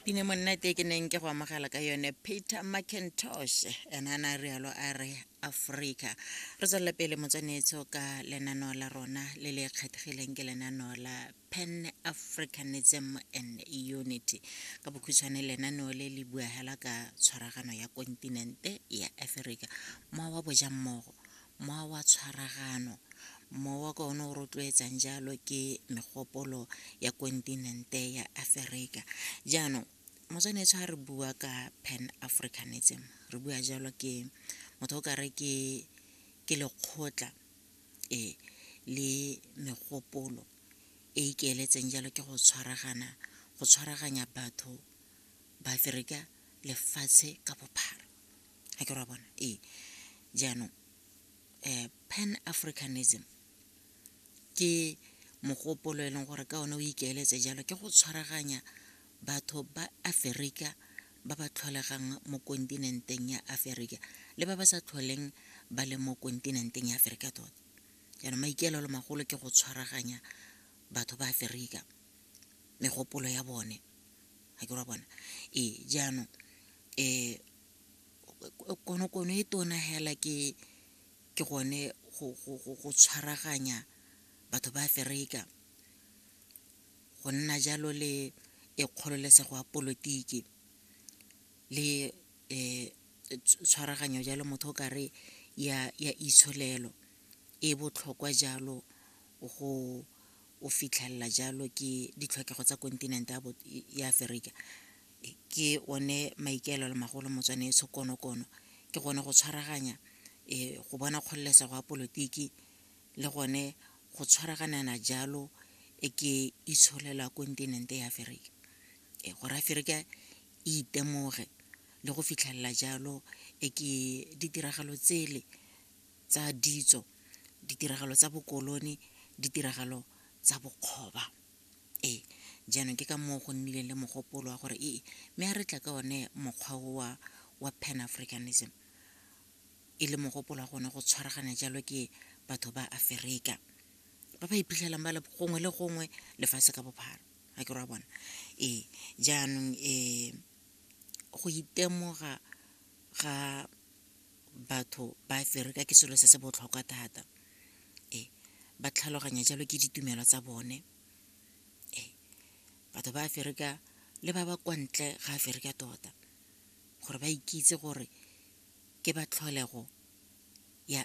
pine monnete ke neng ke go amogela ka yone peter mcintosh ene a na rialo a re aforika re tswelele pele motswanetso ka lenaneo la rona le le kgethegileng ke lenaneo la pan africanism and unity ka bokhutshwane lenaneo le le buagela ka tshwaragano ya kontinente ya aforika mowa wa bojammogo Mowa wa tshwaragano. Mowa ka one o rotloetsang jalo ke megopolo ya kontinente ya Aferika. Jaanong, motswanetsho ga re bua ka Pan Africanism, re bua jalo ke motho o kare ke ke lekgotla e le megopolo e ikeeletseng jalo ke go tshwaragana, go tshwaraganya batho ba Aferika lefatshe ka bophara. ga ke ra bona ee jaanong um pan africanism ke mogopolo e leng gore ka one o ikaeletse jalo ke go tshwaraganya batho ba aferika ba ba tlholegang mo kontinenteng ya aferika le ba ba sa tlholeng ba le mo kontinenteng ya aferika tota jaanong maikaelelo magolo ke go tshwaraganya batho ba aferika megopolo ya bone ga ke ra bona ee jaanong um konokono e tona hela ke ke gone go tshwaraganya batho ba Aferika go nna jalo le e kgololesego ya polotiki le tshwaraganyo jalo motho o kare ya itsholelo e botlhokwa jalo go o fitlhelela jalo ke ditlhokego tsa kontinente ya Aferika. ke one maikaelelo magolo motswane e tshokonokono ke gone go tshwaraganya um go bona kgololesego ya polotiki le gone go tshwaraganana jalo e ke itsholela kontinente ya aferika e gore aferika e itemoge le go fitlhelela jalo e ke ditiragalo tsele tsa ditso ditiragalo tsa bokolone ditiragalo tsa bokgoba Ee, jaanong ke ka moo go nnileng le mogopolo wa gore ee, mme a re tla ka one mokgwa o wa wa Pan Africanism e le mogopolo wa gone go tshwaragana jalo ke batho ba Aferika ba ba iphitlhelang ba le gongwe le gongwe lefatshe ka bophara ga ke ra bona ee jaanong um go itemoga ga batho ba fereka ke selo se se botlhokwa thata e ba tlhaloganya jalo ke ditumelo tsa bone e batho ba fereka le ba ba kwa ntle ga fereka tota gore ba ikitse gore ke ba tlholego ya